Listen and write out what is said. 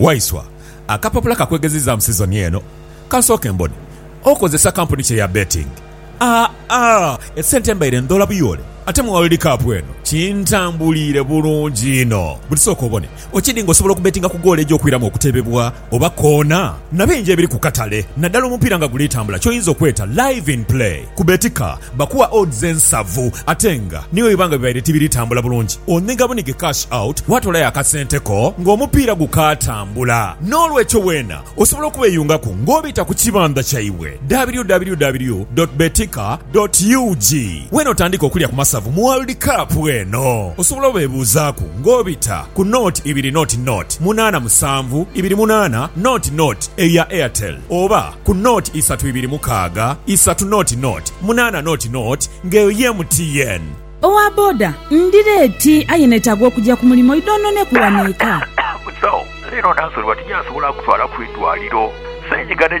Waiswa, akapapula ka kwegezizaamu sizoni eno. Ka nsooke mbone. Okozesa kampuni ki eya betting? Aa, esente mbaire ndhoola buyoole ate mu World Cup eno kintambuliire bulungi inho. Buti sooka obone, okidi nga osobola okubetinga ku goolo egy'okwiramu okutebebwa oba koona na bingi ebiri ku katale, naddala omupiira nga guli tambula ky'oyinza okweta Live in Play ku Betika. Bakuwa odds ensavu ate nga ni bwebiba nga bibaire tibiri tambula bulungi, onhiga bunhige cash out waatoolayo akasente ko ng'omupiira gukaatambula. N'olwekyo weena osobola okubeyungaku ng'obita ku kibandha kyaibwe, www dot betika dot ug. Weena otandike okulya ku masavu mu World Cup eno. Osobola obebuuzaaku ng'obita ku nought ibiri nought nought munaana musanvu ibiri munaana nought nought eyo ya Airtel. oba ku nought isatu ibiri mukaaga isatu nought nought munaana nought nought nga eyo ye MTN. Owa boda ndhira eti aye netaaga okugya ku mulimo idhoononeku wano eka. Musawo, leero nansolebwa tinyasobola kutwala ku idwaliro. Seenyiga ne.